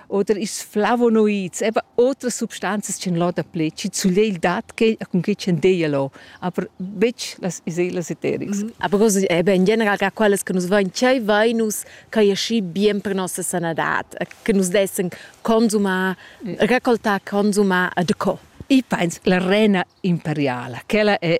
oder is flavonoids, eben otras substanzas ch'en lo dapli, chi zuglier il dat che cun che ch'en deia lo, aber betg las iselas eterics. Mm -hmm. Aber così, eh beh, in general che quellas che nus vain tschei, vain nus che ja schi bien per nossa sanadad, che nus dessen consumar, yeah. raccoltar, consumar e de co. I pens la rena imperiala, quella è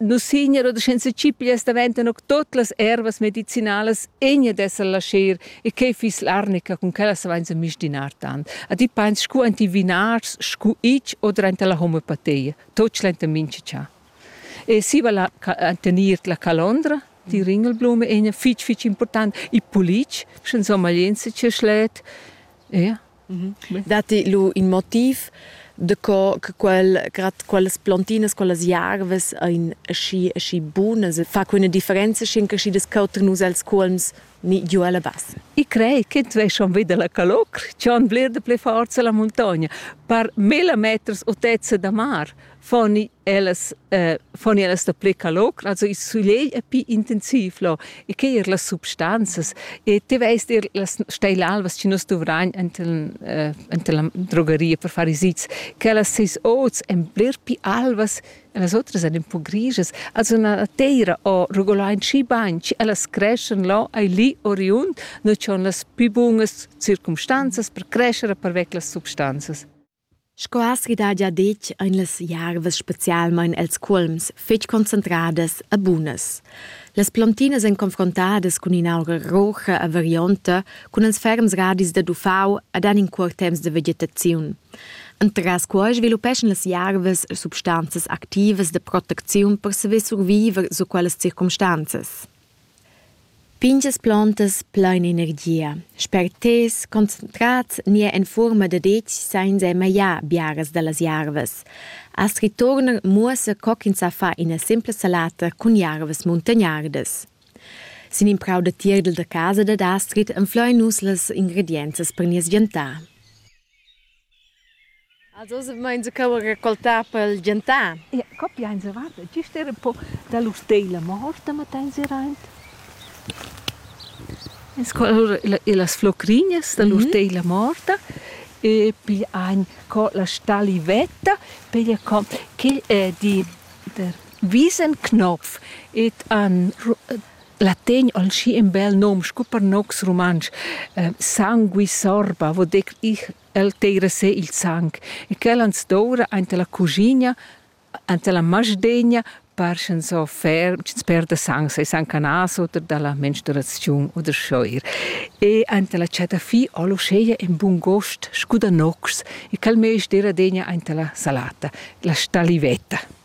Nus signer oder senza cipias daventan auch tot las ervas medicinalas egna d'esser lascher e quei fiss l'arnica cun quella savenza mistinar tant. A ti peins scu enti vinars scu ich oder enta la homeopatia, tot schlenta mincha cha. E siva la tenir la calondra, die ringelblume egna fitg fitg important, il pulic, sche insomma jent se tschè schlet, ja. Mhm. Datti lu in motiv de co che quel, grad quellas plantinas, quellas jarvas ein aschi, aschi bunas, fa quella differenza sin che schi discuter nus els colms ni giu alla bassa? Ich crei che tu hai schon wieder la calor, schon blir de pli forza la montagna, per mille meters otezza da mar. foni ellas eh, foni ellas da ple calog also il soleil è più intensiv lo e che er las substanzas e te veist er las steil alvas ci nos dovrain enten eh, enten la drogeria per fare sits che las seis oz en bler più alvas e las otras ein un po' griges also na teira o regolain ci bain ci ellas creschen lo ai lì oriund no c'on las più bungas circumstanzas per crescere per vec las substanzas Sco aschi dagia detg ein las jarvas specialmein els cuolms fetg concentradas e bunas. Las plontinas ein confrontadas cun in'aura roja e varionta, cun ils ferms radis dad uffau ed han in cuort temps de vegetaziun. Entras quei sviluppeschan las jarvas substanzas activas de protecziun per saver surviver sut quellas circumstanzas. Pingias plontas plein energia, sperters, concentrats nia en fuorma da detg sainza magliar biaras dallas jarvas. Astrid Turner muossa co ch'ins sa far ina simpla salata cun jarvas muntagnardas. Sin in prau da tierdel da casa dad Astrid enflein nus las ingredienzas per nies viantar. Also se meins cheu raccoltà pel gentar. Ja, copia ins avat, gist era un po da lur steila, ma hosta mett'ins era aint. En scola lur las flocrinhas da lur teila morta e pigl ein co la stalivetta, pigl co quel è di der Wiesenknopf et an La tegn ol schi in bel nom scu per nocs rumantsch. Eh, sangui sorba vo dir ich, el teira se il sang. E quel ans doura aint la cugina, ant la masdegna, par sch'ns offer, sch'ns perda sang, sei sang canas oder dalla menstruaziun oder schoir. E ant la chatafì ol uscheia in bun gost scu da nocs e quel meis d'eira degna aint la salata, la stalivetta.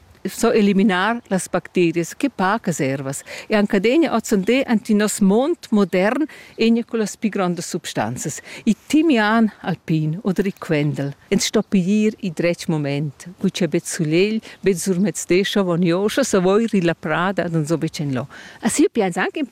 so eliminar las bacterias che pacas ervas e anche adegna ozzande anti nos mond modern enia con las pi grandas substanzas i timian alpin oder i quendel ins sto piglier i dretg moment guccia bet sulegl bet surmezde scho vonjoscha savoir illa prada ad uns obicen lo a si pians anche un